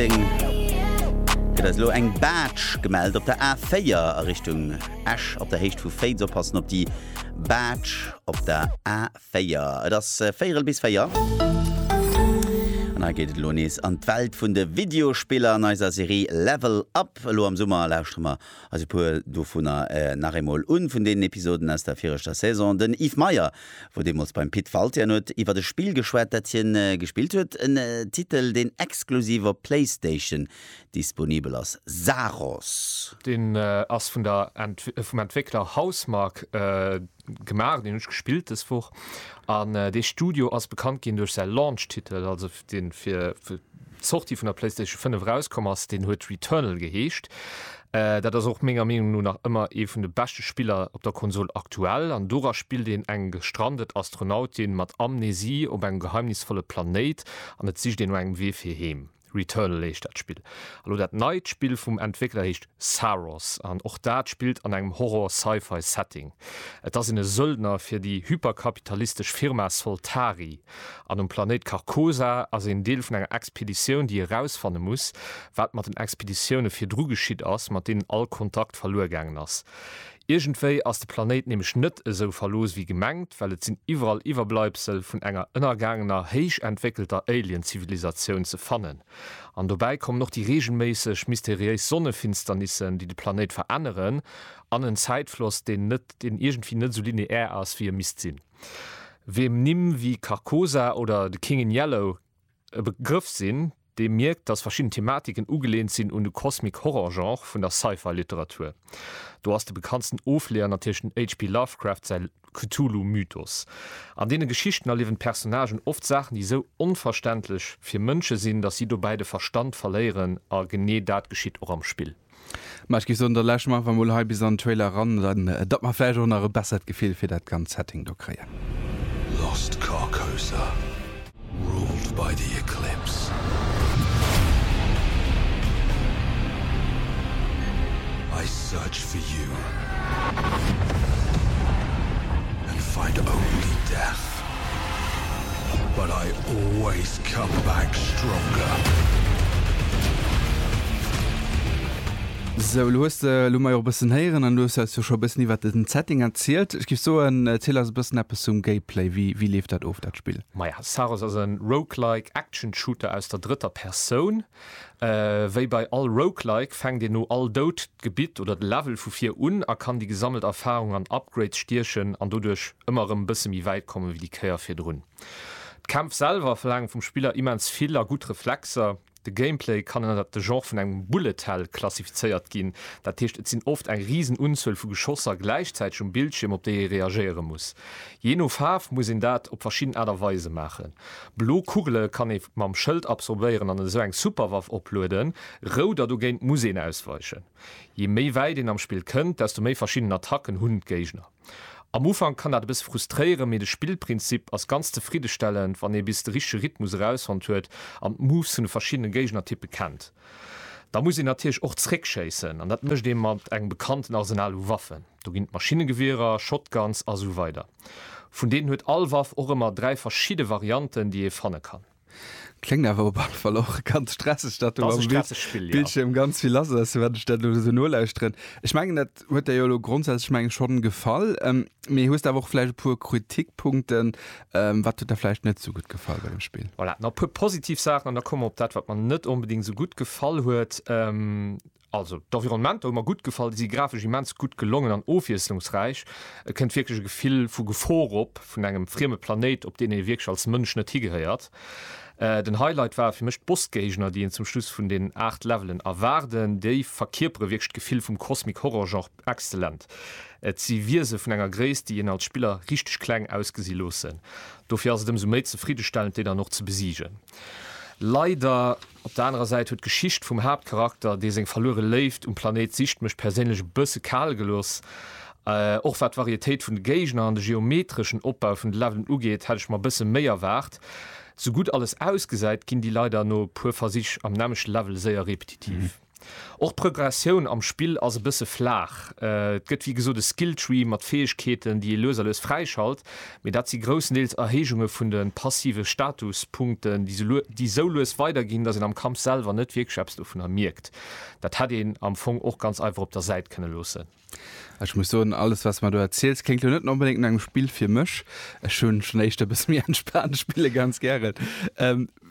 Deng gëtt eis elo eng Barge gemellt op der A4 a Richtung Esch op der Héicht vu Féiz. Oppassen op déi Barge op der A4. Et ass äh, véierel bis véier. An hei geet et elo nees an d'Welt vun de Videospiller an eiser Serie Level Up. Elo am Summer lauschtere mer eis e puer dovunner äh, nach eemol un, vun deenen Episoden aus der viregter Saison. Den Yves Meyer wou deemools beim Pit Waltian huet iwwert e Spill geschwat, dat hien gespillt huet, en Titel deen exklusiv op Playstation disponibel ass, Saros. Deen ass vun der, vum Entwéckler Housemarque gemaach, deen hunn ech gespillt dës Woch an dee Studio ass bekannt ginn duerch säi Launch-Titel, also deen fir Sortie vun der Playstation 5 erauskomm ass, deen huet Returnal geheescht. Dat ass och menger Meenung no nach ëmmer ee vun de beschte Spiller op der Konsol aktuell, an dora spillt een eng gestrandet Astronautin mat Amnesie op engem geheimnisvolle Planéit an et sicht een no engem Wee fir heem. Returnal heescht dat Spill. A lo dat neit Spill vum Entwéckler heescht Saros an och dat spillt an engem Horror-Sci-Fi Setting. Et ass een e Söldner fir déi hyperkapitalistesch Firma Soltari. An um Planéit Carcosa ass een Deel vun enger Expeditioun, déi erausfanne muss, wat mat den Expeditioune virdru geschitt ass, mat deenen all Kontakt verluer gaangen ass. Iergendwéi ass de Planéit nämlech net esou verlooss wéi gemengt, well et sinn iwwerall Iwwerbleibsel vun enger ënnergaangener, héich entwéckelter Alien-Zivilisatioun ze fannen. An dobäi kommen och déi reegelméisseg mysteriéis Sonnefinsternissen, déi de Planéit veränneren, an en Zäitfloss, deen net, deen iergendwéi net esou lineär ass, wéi e misst sinn. Wiem Nimm wéi Carcosa oder The King in Yellow e Begrëff sinn, dee mierkt, datt verschidden Thematiken ugeleent sinn un de Cosmic-Horror-Genre vun der Sci-Fi-Literatur. Do ass de bekanntsten Ofleeër natierlech den HP. Lovecraft säi Cthulhu-Mythos. An deene Geschichten erliewen d'Personnagen oft Saachen, déi esou onverständlech fir Mënsche sinn, datt si dobäi de Verstand verléieren, a genee dat geschitt och am Spill. Ma ech géif soen, da lauschteren mer einfach mol hei bis an den Trailer eran, dann datt mer vläicht och nach e bessert Gefill fir dat ganzt Setting do kréien. Lost Carcosa, ruled by the Eclipse. I search for you and find only death. But I always come back stronger. Sou, elo hues de, elo hu mer jo och e bëssen héieren an elo hues de eis jo scho e bëssen iwwert den Setting erzielt. Ech géif soen, erziel eis e bëssen eppes zum Gameplay. Wéi, wéi leeft dat of, dat Spill? Maja, Saros ass e Roguelike Action Shooter aus der drëtter Persoun. Wéi bei all Roguelike fänkt een no all Doud d'Gebitt oder de Level vu vir un a kann déi gesammelt Erfarung an Upgrades stiechen an doduerch ëmmer erëm e bësse méi wäit komme wéi déi Kéier virdrun. D'Kämpf selwer verlaange vum Spiller immens vill a gutt Reflexer. De Gameplay kann ënnert de Genre vun engem Bullet Hell klassifizéiert ginn, dat heescht et sinn oft eng risen Unzuel vu Geschosser gläichzäiteg um Bildschierm op déi ee reagéiere muss. Jee no Faarf muss een dat op verschidden Aart a Weise maachen. Blo Kugele kann ee mam Schëld absorbéieren an esou eng Superwaff oplueden, rout a dogéint muss een ausweichen. Je méi wäit een am Spill kënnt, desto méi verschidden Attacken hunn d'Géigner. Am Ufank kann dat e bësse frustréieren, mee de Spillprinzip ass ganz zefriddestellend, wann ee bis de richtege Rhythmus erausfonnt huet an d'Moves vun de verschiddene Géignertyppe kennt. Da muss een natierlech och zeréckschéissen an dat mécht ee mat engem bekannten Arsenal u Waffen. Do ginn et Maschinnegewierer, Shotguns a sou weider. Vun deenen huet all Waff och ëmmer dräi verschidde Varianten, déi ee fanne kann. Kléngt awer op alle Fall och ganz stresseg, datt do am Bildschierm ganz vill lass ass, wat ech dat elo esou nolauschteren. Ech mengen, dat huet der jo elo grondsätzlech mengen ech schonn gefall, mee hues der awer och vläicht e puer Kritikpunkten? Wat huet der vläicht net esou gutt gefall bei dem Spill? Voilà, nach e puer positiv Saachen an da komme mer op dat, wat mer net onbedéngt esou gutt gefall huet. Also d'Environnementer hu mer gutt gefall, déi si grafesch immens gutt gelongen an ofwiesslungsräich. Et kënnt wierklech e Gefill vu Gefor op, vun engem frieme Planéit, op deen ee wierklech als Mënsch net higehéiert. Den Highlight ware fir mech d'Bossgéigner, déi een zum Schluss vun den 8 Levelen erwaarden. Déi verkierpere wierklech d'Gefill vum Cosmic-Horror-Genre exzellent. Et si Wiese vun enger Gréisst, déi een als Spiller richteg kleng ausgesi loossen. Dofir ass et ëmsou méi zefriddestellend, déi dann och ze besiegen. Leider Op der anerer Säit huet d'Geschicht vum Haaptcharakter, dee seng verluere Léift um Planéit sicht, mech perséinlech e bësse kal gelooss. Och wat d'Varietéit vun de Géigner an de geometreschen Opbau vun de Levelen ugeet, hätt ech mer bësse méi erwaart. Sou gutt alles ausgesäit, ginn déi leider no e puer Versich am nämmlechte Level séier repetitiv. Och d'Prögressioun am Spill ass e bësse flaach. Et gëtt wéi gesot e Skilltree mat Fäegkeeten, déi ee lues a lues fräischalt, mee dat si groussendeels Erhéijunge vun de passive Statuspunkten, déi sou lues weiderginn, datt een am Kampf selwer net wierklech eppes dovunner mierkt. Dat hätt een am Fong och ganz einfach op der Säit kënne loossen. Ech muss soen, alles wat s de mer do erziels, kléngt lo net onbedéngt no engem Spill fir mech. Ech hu schonn éischter e bësse méi entspaant Spille ganz gären.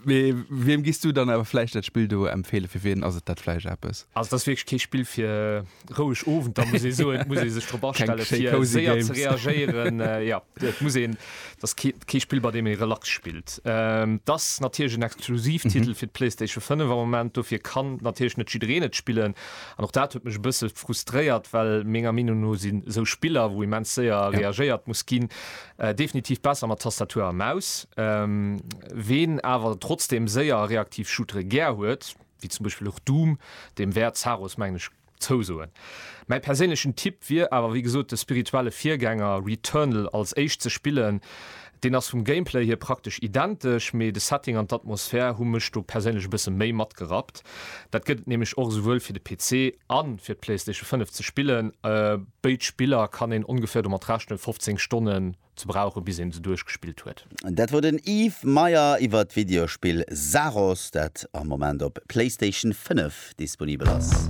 Mee wiem giss du dann awer vläicht dat Spill do empfeelen? Fir wien ass et dat vläicht eppes? Also et ass wierklech kee Spill fir roueg Owenter, muss ee soen. Et muss ee sech drop astelle fir séier ze reagéieren. Jo, et muss een, et ass kee Spill bei deem ee relax spillt. Et ass natierlech en Exklusivtitel fir d'Playstation 5 am Moment, dofir kann natierlech net jiddereen et spillen. An och dat huet mech e bësse frustréiert, well menger Meenung no sinn esou Spiller, wou immens séier reagéiert muss ginn, definitiv besser mat Tastatur a Maus. Ween awer trotzdeem séier a reaktiv Shootere gär huet, wéi zum Beispill och Doom, deem wäert Zaros, mengen ech, zousoen. Mäi perséinlechen Tipp wier awer wéi gesot de spirituelle Virgänger Returnal als éischt ze spillen, Deen ass vum Gameplay hier praktesch identesch, mee de Setting an d'Atmosphär hu mech do perséinlech e bësse méi matgerappt. Dat gëtt et nämlech och esouwuel fir de PC a fir d'Playstation 5 ze spillen. Béid Spiller kann een ongeféier domat rechnen, 15 Stonnen ze brauchen, bis een se duerchgespillt huet. Dat wor den Yves Meyer iwwert d'Videospill Saros, dat am Moment op Playstation 5 disponibel ass.